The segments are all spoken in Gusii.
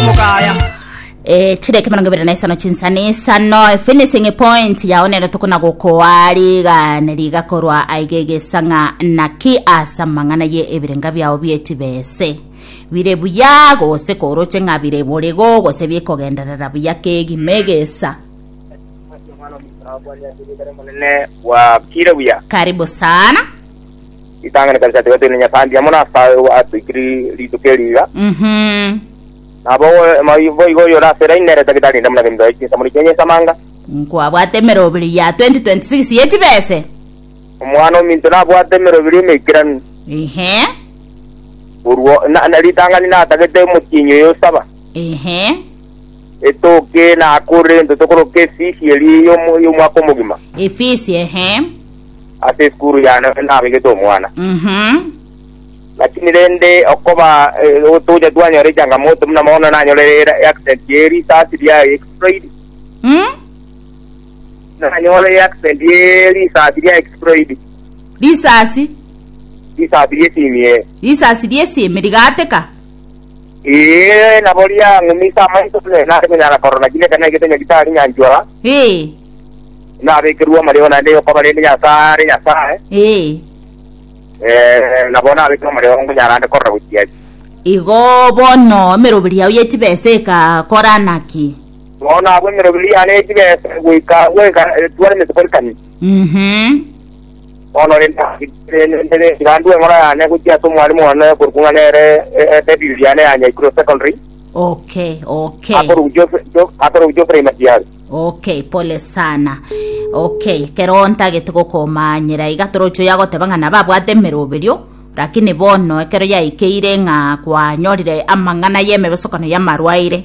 omogaya Eh, chire ekemerongo ibere na isano chinsa na isano finishing point yao nero tokona gokoa riga ne riga korwa aiga egesang'a naki asa mang'ana ye ebirenga biao biechibese bire buya gose koroche ng'a bire borego gose bikogenderera buya kegima egesa Omwana omusaabwa niatigitare monene bwakire buya. karibu sana Ritang'ani kabisa tiga tene Nyasae mbuya mono ase aye obo atoikire rituko eri iga. Mhm. Nabo moi- boigo oyore ase line nere tagitari inde buna geminto yaye chinsamuni chiaye nyesamanga. Nkwabwate emerobiri ya 2026 ye chibese. Omwana ominto nabwate emerobiri emeikeranu. Ehe. Korwa na- na- ritang'ani natagete omotienyi oyo osaba. Ehe. Etoke eye nakorire into tokoroka efisi eria y'omwaka omogima. Efisi ehe. Ase esukuru yane nabegete omwana. Mhm. Lakini rende okoba eh, otoja twanyora echangamoto buna mono nanyore accident ye risasi ria exploit. Mm? Nanyore accident ye risasi ria exploit. Risasi. Risasi rie simie. Risasi rie simi rigateka. Ee, nabo riang'umisa amaiso, ne nare konyara korora kiria ekero naigete ng'a gitari nyanchwa, Ee, nabekerwe amareo naende yokoba rende Nyasae are Nyasae, ee. eh, nabo nabekerwe amareo nkonyara ande korora gochia ase. Igo bono emeroberi yao ye chibesa egakora naki? Bono abwo emeroberi yane ye chibesa goika goika etware emesiko rikani. Mhm. Bono rende nere ngandue eng'ora yane gochia ase omwarimu one okorokwa ng'a nere e- e- Edith Diane ya Nyaikuro Secondary, Okay, okay. akorokwa Geoff- Geoff- akorokwa Geoffrey Matiari. Okay, pole sana. Okay, kero ntagete gokomanyera iga toroche oyo agoteba ng'a nabo abwate emeroberio, lakini bono ekero yaikeire ng'a kwanyorire amang'ana y'emebesokano y'amarwaire,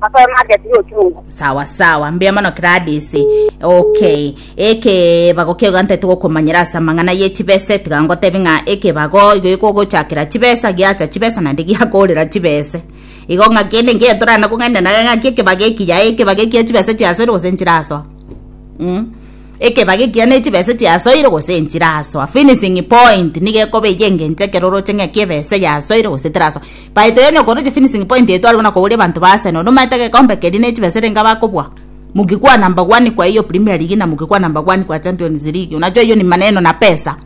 Asoe market y'ochungu. sawa sawa mbuya mono gladys okay ekebago kego gante togokomanyera ase amang'ana ye chibese tiga ngotebi ng'a ekebago igo ekogochakera chibesa giacha chibesa naende giakorera chibese igo ng'a kende nkere torana kong'aina nare ng'aki ekebago eki yae ekebago ekia chibesa chiasoire gose nchirasoa mm. Ekebaga ekiya ne chibesa chiasoire gose enchirasoa, finishing point, nigo ekoba eyio engencho ekero oroche ng'a ekia ebesa eyasoire gose terasoa. Baito yonye okoroche finishing point etwarwe buna koboria abanto ba Arsenal, nomanyete egekombe keria ne chibesa erenga bakobua? Mukikwana number one kwa eyio Premier League na mukikwana number one kwa Champions League, unajua hiyo ni maneno na pesa.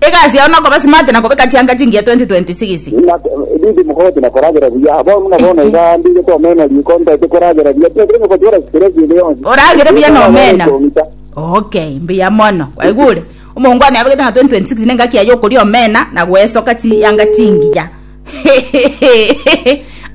Egasi yao nokoba smart na kobeka chianga chingiya 2026. Bibi mokogotwa na koragera buya. Bono na bono iga ndire komena riko ntaete koragera buya. Tintari na kotwara stress ende yonsi. Oragere buya na omena. Ok, mbuya mono. Kwaigure? Omonto one abegete ng'a 2026 ne engaki yaye okoria omena na goesoka chianga chingiya.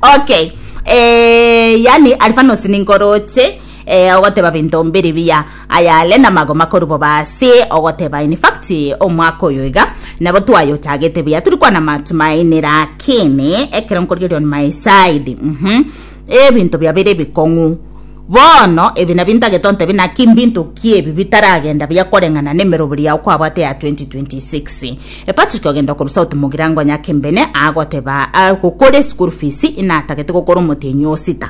Ok, eeh, yaani Alphanos ninkoroche, eeh, ogoteba binto mbiri biya. ayare namagoma korwa bobe ase ogoteba in fact omwaka oyo iga nabo twayotagete buya turi kwana matumaini lakini ekero nkorigeria on my side mm -hmm. ebinto biabere ebikong'u bono ebi nabio ntagete ontebe naki mbinto ki ebi bitaragenda buya koreng'ana na emerobori yao kwabwate ya 2026 e patrick ogenda korwa south mogirango nyakembene agoteba agokora esukuru fees inatagete gokora omotenyi osita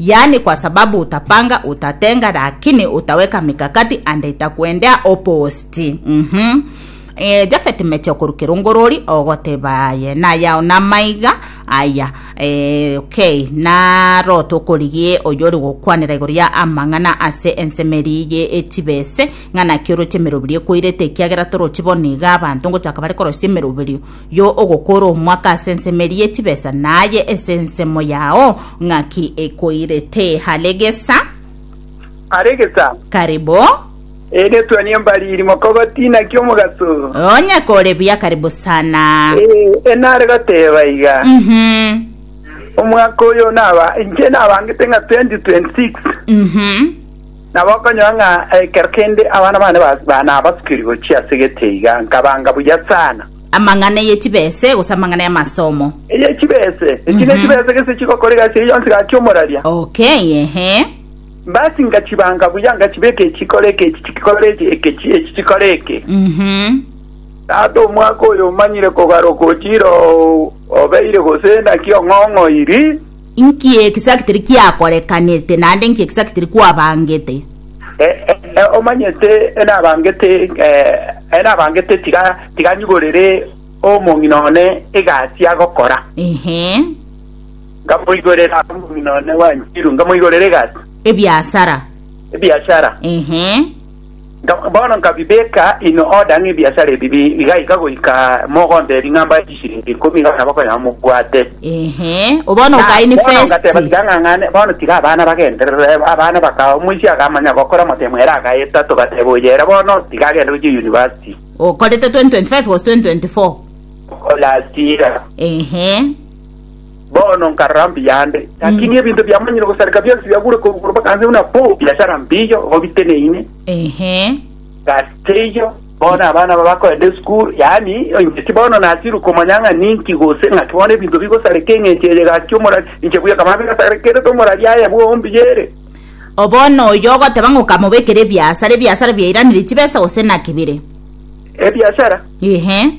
yaani kwa sababu utapanga utatenga lakini utaweka mikakati and itakuendea opposite mm-hmm. e, jafeti meche okorukera ongorori ogoteba aye nayao namaiga aya e, okay naro tokorigie oyori gokwanera igoro ya amang'ana ase ensemeri ye echibese ng'ana kioroche emerobirio ekoirete ekiagera toroche boniga abanto ngochaka bare korosia emerobirio Yo ogokora omwaka as'ensemo ye chibesa naye es'ensemo yao ng'aki ekoirete hare gesa. Hare gesa. Karibo. Ee netuani embariri mokogoti naki omogaso. Onye kore buya karibo sana. Ee enare goteba iga. Mhm. Omwaka oyo naba inche nabangete ng'a 2026. Mhm. Na bakonyora ng'a ekero kende abana bane ba- nabasukiri gochia ase egete iga, nkabanga buya sana. Amang'ana ye chibese gose amang'ana y'amasomo? Eye chibese. Echi ne chibese gese chigokora egasi eye yonsi gaki omoraria. Okay, ehe. Basi nkachibanga buya, nkachibeka eke chikore eke, echi chikore eke, eke chi- echi chikore eke. Mhm. Tata omwaka oyo omanyire kogaroka ochire oo obeire gose naki ong'ong'oiri. Inki egisakitiri kiakorekanete, naende inki egisakitiri kwabangete? Ee, omanyete, nabangete, ee, nabangete, tiga, tiga nyiborere omong'ina one egasi agokora. Ehe. Ngamoigorera omong'ina one bwanchiru, ngamoigorera egasi. Ebiasara. Ebiashara. Ehe. Bono nkabibeka in order ng'a ebiasara ebi bigaika goika mogonte ring'ambo ya chisiringi ikomi iga abana bakonyora mobwate. Ehe, o bono Na bono ngateba okainvesti. tikang'ang'ane, bono tiga abana bagenderere, abana baka omoisia akamanya gokora amatemo ere agayeta, togateba oyo ere bono tiga agende gochia university. Okorete 2025 gose 2024. Last year. Ehe. Bono nkarora mbuya ande, lakini ebinto biamanyire gosareka bionsi biagure korwa igoro mpaka nse, buna pu, biashara mbiyo, igo biteneine. Ehe. Gasiyo bono abana aba bakoenda esukuru, yaani ing'iti bono nasirwe komanya ng'a ninki gose ng'aki bono ebinto bigosareka eng'encho eye gaki omorari, inche buya kaba bigasarekerete omorari aye bwombuya ere. O bono oyo ogoteba ng'a okamobekera ebiasara, ebiasara biairanire chibesa gose naki bire? Ebiashara? Ehe.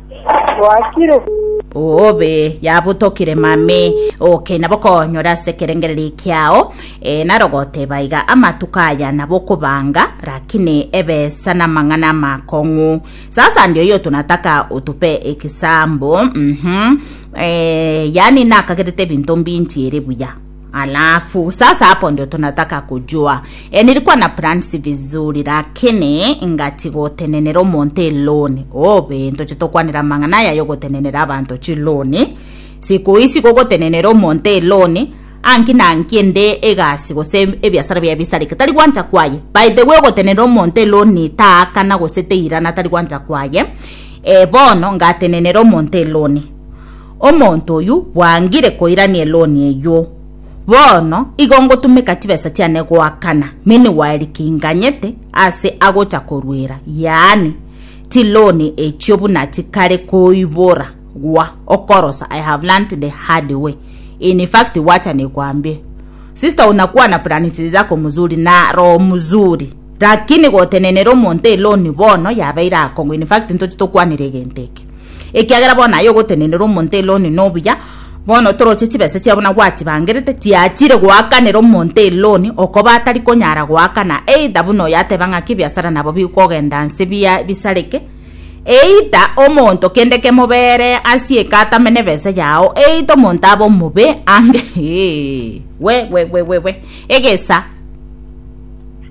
Gwakire. obe yabutokire mame okay nabo konyora ase ekerengereri kiao eh, naro goteba iga amatuko aya nabo okobanga rakini ebesa na amang'ana amakong'u sasa ndio yo tunataka utupe ekisambo mhm eh, yani nakagerete ebinto mbinchiere buya Alafu sasa hapo ndio tunataka kujua e, nilikuwa na plans vizuri lakini ngati gotenenera omonto eloni obe ntoche tokwanera mang'ana yayo gotenenera abanto chiloni siku isi gogotenenera omonto eloni anki na anki ende egasi gose ebiasara bia bisareke tari gwancha kwaye by the way gotenenera omonto eloni taakana gose teirana tari gwancha kwaye e, bono ngatenenera omonto eloni Omonto oyio bwangire koirania eloni eyio. Bono igo ngotumeka chibesa chiane goakana miniwari kinganyete ase agocha koruera, yaani, chiloni echio buna chikare koibora gwa okorosa I have learnt the hard way. In fact wacha nekwambie. Sister unakua na plans zako mzuri na roho mzuri. Rakini gotenenera omonto eloni bono yabeire akong'u in fact ntoche tokwanere egento eke ekiagera bono aye ogotenenera omonto eloni nobuya bono toroche chibesa chiabo na gwachibangerete tiachire goakanera omonto eloni okoba atari konyara goakana either buna oyo ateba ng'aki ebiasara nabo bikogenda nse bia bisareke either omonto kende kemobere asie eka atame na ebesa yao either omonto abe omobe ange we we we we we egesa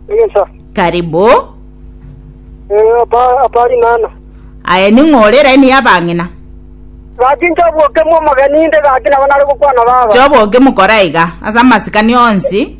Egesa. Karibu. Eh, apa apari nana. Aye ning'ore eraini y'abang'ina. Gaki nchoboke mo omogeni inde gaki nabo nare gokwana baba. Choboke mokora iga ase amasikani onsi.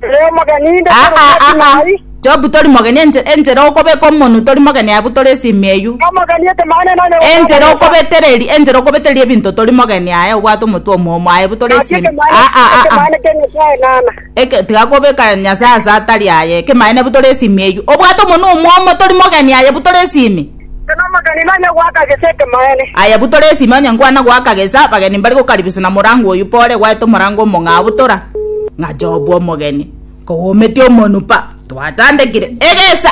Ere omogeni inde Ah, ah, ah, ah. mai. Jobu tori mogeni enche- enchera okobeka omonu tori mogeni abu tori esimi eyio. Omogeni etemane nane. Enchera okobetereri enchera okobetereri ebinto tori mogeni aye obwate omotwe omomo aye bu tori esimi. Ah, ah, ah, ah. Etemane kene sae nana. Eke tigakobeka Nyasae ase atari aye, ekemanene bu tore esimi eyio. Obwate omonwa omwomo, tori mogeni aye bu tore esimi. Onye nomogeni nonye goaka gesa ekemanene. Aye bu tore esimi onye nkwana goaka gesa, bageni mbari gokaribiswa na morango oyio pore gwaete omorango omong'ao bu tora. Ng'a Jobu omogeni, kogometi omonwa pa, twachandekire egesa.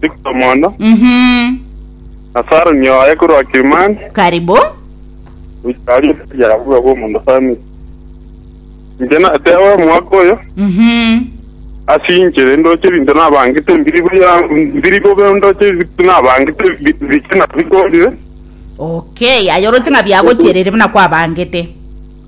Victor Mondo, Mhm. na Saroni oye korwa Kilimani, Karibu. goika aria Elia abua bw'omonto Samiri. Inche nateeba omwaka oyo, Mhm. ase inche rende oche ebinto nabangete mbiri buya, mbiri bobe onde oche ebinto nabangete bi- biche na bikorire, Okay, aye oroche ng'a biagochierire buna kwabangete.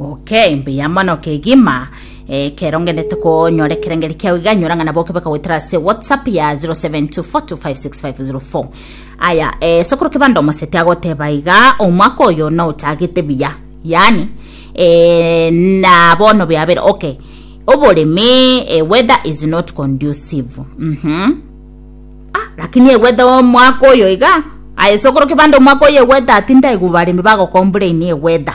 Oke, imbe ya mono kegima eh, kero ngendete konyora ekerengeri kiao iga nyora ng'ana boke bakagoetera ase whatsapp ya 0724256504 aya eh, sokoro kebanda omoseti agoteba iga omwaka oyo naotagete buya yani eh, na bono biabere okay oboremi eh, weather is not conducive mhm ah, lakini egweta omwaka oyo iga aye sokoro kebanda omwaka oyo egweta atinda igubaremi bagokombura ini egweta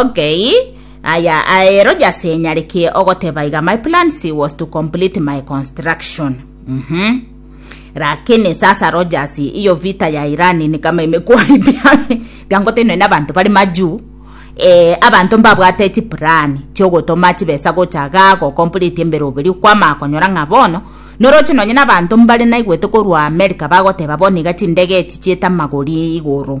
Okay, aya aero jase nyarekie ogoteba iga my plans was to complete my construction. Mhm. Lakini sasa Rogers, iyo vita ya Iran ni kama imekuharibia biangotene na bantu bari majuu eh, abanto mbabwate chipurani chiogotoma chibesa gochaga gokomplete embere oberi kwama akonyora ng'a bono noroche nonye nabanto mbare naigwete korwa amerika bagoteba bono iga chindege echi chieta magori igoro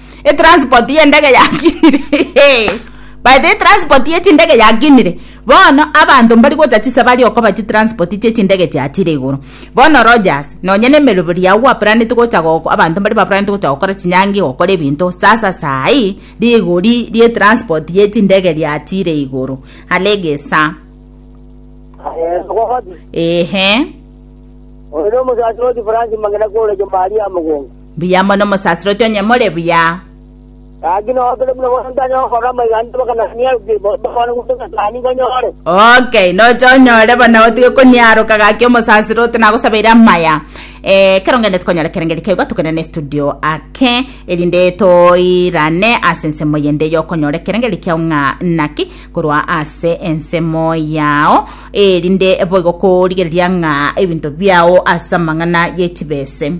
etransport y'endege yakinire by the way etransport y'echindege yakinire bono abanto mbari gocha chisa bari okoba chitransport chi'echindege chia chire igoro bono Rogers nonye na emeroberi yao gwaplaneti gocha goko abanto mbari baplaneti gocha gokora chinyangi gokora ebinto sasa saii rigori ri'etransport y'echindege ria chire igoro are egesa Eh, Mogogoti, ehe oyo nomosacha oti France mang'ina kore Jomari ya Mogongo. Mbuya mono omosasroti onye more buya. Gaki nogokire buna bono ntanye gokora amaiga ande mpaka nanie aruke babane gose omosaani nkonyore. Okay, noche onyore bono otige koniaroka gaki omosasroti nagosabeire amaya. Eh, kero ngende tikonyora kerengeri kegwa tokende ne studio ake erinde toirane ase ensemo yende yokonyora ekerengeri kiao ng'a naki korwa ase ensemo yao erinde boigo korigereria ng'a ebinto biao ase amang'ana ye chibese.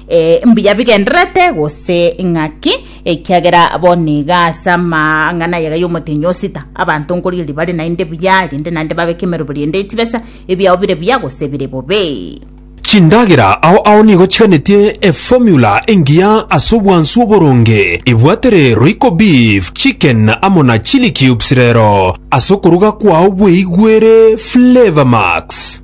Eh, mbuya bigenderete gose ng'aki ekiagera bono iga ase amang'ana ayega y'omotenyi osita abanto nkorigereria bare naende buya rende naende babeke emeroberi ende echibesa ebiao bire buya gose bire bobe Chindagera ao ao nigo chiganetie eformula engiya ase obwansu oboronge. Ebwatere Royco beef, chicken amo na chilli cubes rero ase okoruga kwao bweigwere Flavour Max.